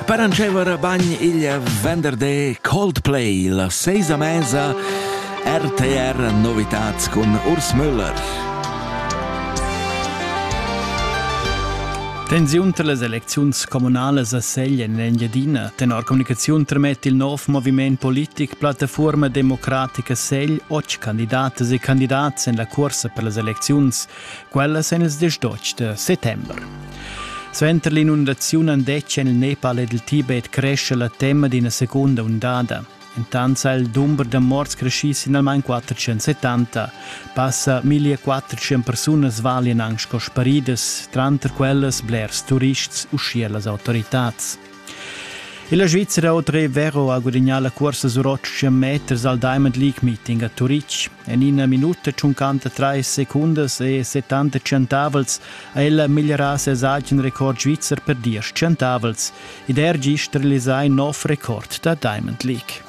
Per antschever bagn igl venderday Coldplay la seisa mesa RTR Novitats cun Urs Müller. Tensiun tra las elecziuns communales a Segl en l'Engiadina. Tenor communicaziun tremet il nov moviment politic Plattaforma Democratica Segl otg candidats e candidats en la cursa per las elecziuns. quellas en ils dis d'otg da settember. Suenter l'inundaziun han detg en il Nepal ed il Tibet cresce la tema d'ina seconda ondada. Intant ha il dumber da morts creschì sin almain 470. Passa 1400 persunas valian anc sco sparidas, tranter quellas blers turists uschia las autoritads. Illa Svizra otra è Vero ha gudagnà la cursa sur 800 meters al Diamond League Meeting a Turitg. En ina minuta 53 secundas e 70 centavels ha ella migliorà ses agen record svizzer per 10 centavels ed er gist realisà in nov record da Diamond League.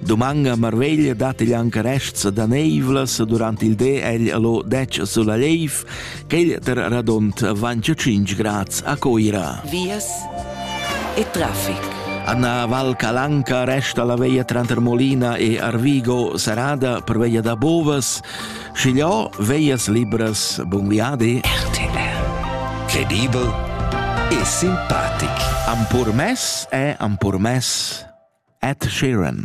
Doman a Marveglia dat igl anca rests daneivlas durant il de egl allo 10 sulla Leif, quel ter radont vancio 5 grads a Coira. Vias e traffic. Anna Val Calanca resta la veia tranter Molina e Arvigo serrada per veia da Bovas. Schigliò veias libras bun viadi? RTR Credibel e simpatic. Am purmess è am purmess Ed Sheeran.